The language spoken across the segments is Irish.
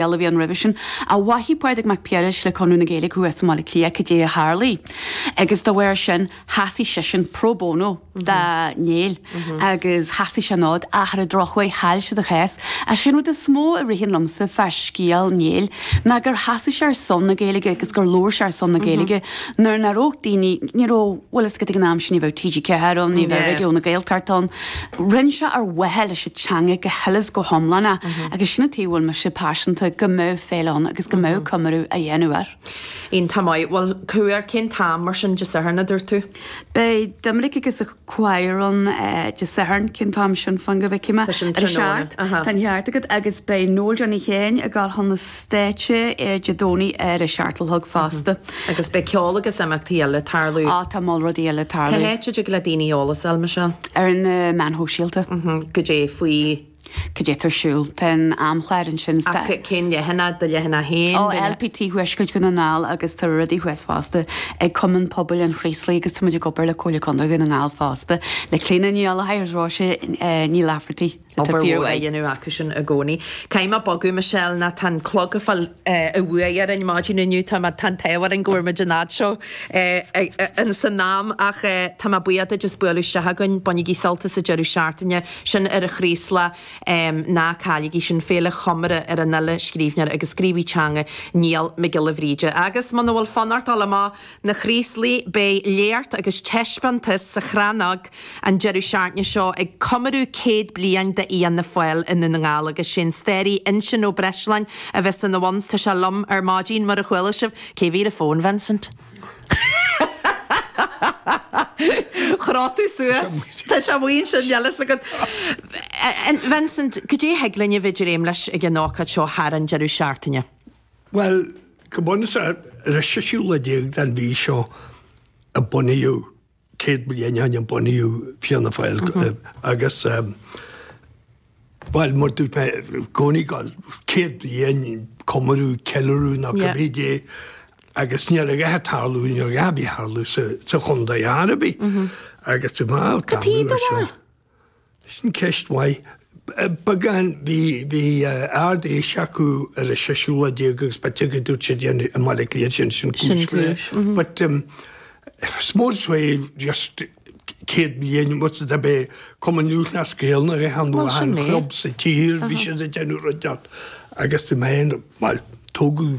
Gael a bhí ann roimhe sin. An bhfaigheadh Pádraig Mac Piarais le Conradh na Gaeilge chucu as i mBaile Átha Cliath cibé a tharlaigh agus dá bharr sin sheasaigh seisean pro bono do Néill agus sheasaigh sé an fód ach ar an drochuair chaill siad a chás. Ach sé an rud is mó a ritheann liomsa fá scéal Néill ná gur sheasaigh sé ar son na Gaeilge agus gur labhair sé ar son na Gaeilge nuair nach raibh daoine, ní raibh, bhfuil a fhios agat ag an am sin ní bheadh TG4 ann, ní bheadh Raidió na Gaeltachta ann. Rinne sé ar mhaithe leis an teanga go huile 's go hiomlán é agus sin an fáth a bhfuil mise paiseanta go mbeadh féile ann agus go mbeadh comóradh á dhéanamh air. Iontach maith. Bhuel, cór, cén t-am ar sin Dé Sathairn a dúirt tú? Beidh Doiminic agus a chór ann Dé Sathairn, cén t-am sin fan go bhfeicfidh mé? Tá sin tráthnóna. Tá an ceart agat agus beidh Noel Johnny Sheáin ag dul chun an stáitse Dé Domhnaigh ar a seacht a chlog fosta. Agus beidh ceol agus imeachtaí eile ag tarlú. Ah, tá moll rudaí eile ag tarlú. Cé h-áit a dtig le daoine eolas fháil, Michelle? Ar na meáin shóisialta. Mm-hm. Goidé faoi. Cad é atá ar siúl? Tá an amchlár ansin sa. Ach cén leathanach? Do leathanach féin? Ó LPT Thuaisceart Dhún na nGall agus tá rudaí thuas fosta ag Cumann Pobail an Chraoslaigh agus táimid ag obair le Comhairle Contae Dhún na nGall fosta, le Clíona Ní Ghallachóir agus Róise Ní Laifeartaigh. Obair mhór á dhéanamh acu sin i gcónaí. Caithfidh mé bogadh, Michelle, nó tá an clog ag fáil an bhuaidh orainn maidin inniu. Tá an t-ádh orainn go bhfuair muid a fhad seo ins an am ach tá mé buíoch duit as bualadh isteach againn. Bainigí sult as an deireadh seachtaine. sin ar an Chraoslach. Ná cailligí sin. Féile chomóradh ar an fhile, scríbhneoir agus gníomhaí teanga Niall Mac Giolla Bhríde. Agus muna bhfuil fonn ort dul amach, Na Chraoslaigh, Beidh léacht agus taispeántas sa Chrannóg an deireadh seachtaine seo ag comóradh céad bliain de Fhianna Fáil i nDún na nGall agus sé an staraí Uinseann Ó Breisleáin a bheas ina bhun Tá tusa liom ar maidin, mar a chuala sibh. Cé mhéad fón, Vincent? Chroith tú suas. Tá sé amuigh ansin, níl a fhios agat. Vincent, cad é a thig linn a bheith ag dréim leis ag an ócáid seo thar an deireadh seachtaine? Bhuel, go bunúsach, ar an séú lá déag den mhí seo a bunaíodh, céad bliain ó shin a bunaíodh Fianna Fáil agus, bhuel, mar dúirt mé, i gcónaí céad bliain, comóradh, ceiliúradh nó cad é dé agus ní raibh a dhath ag tarlú, ní raibh a dhath ag tarlú sa chontae ar bith agus, bhuel, tá an uair seo. Cad é do bharr? Sin ceist mhaith. Beagán, bhí Ard Fhéis acu ar an 16ú lá agus b'fhéidir go dúirt siad i mBaile Átha Cliath sin sin cúis le but is mór is mé just 100 bliain muid is dob é Cumann Lúthchleas Gael nó aon chlub sa tír bhí siad ag déanamh rud inteacht agus bhí mé bhuel tógadh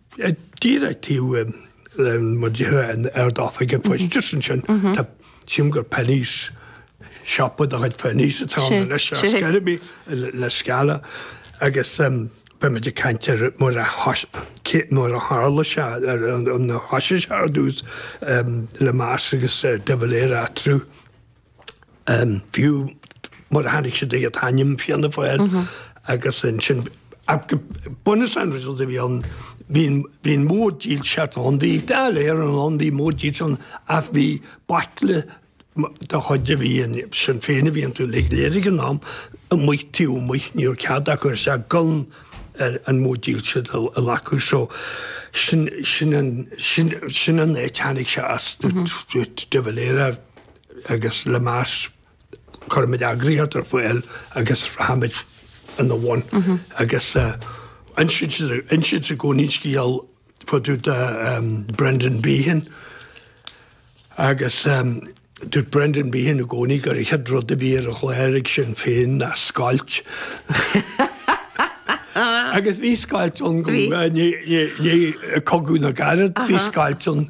díreach taobh thiar d'Ard-Oifig an Phoist just ansin tá sílim gur Penneys siopa de chuid Penneys atá ann anois ar Skerriby La Scala agus beidh muid ag caint ar nuair a nuair a tharla sé nuair a thosaigh sé ar dtús Lemass agus de Valera through. Fiú mar a tháinig siad an t-ainm Fianna Fáil agus ansin bunús an rud a bhí ann, bhí an mhóid dílseachta ann, bhí Dáil Éireann, bhí móid dílseachta ann ach bhí baicle de chuid Shinn Féin a bhí i dTeach Laighean ag an am amuigh taobh amuigh, ní raibh cead acu isteach gan an mhóid dílseachta a ghlacadh. So sin an áit a tháinig sé as de Valera. agus Lemass, cuirfimid eagraíocht ar fáil agus rachaimid ina bhun. Agus insítear i gcónaí an scéal fá dtaobh de Brendan Behan agus dúirt Brendan Behan i gcónaí gur an chéad rud a bhí ar an chlár ag Sinn Féin ná scoilt. Agus bhí scoilt ann, i ndiaidh Chogadh na gCarad, bhí scoilt ann.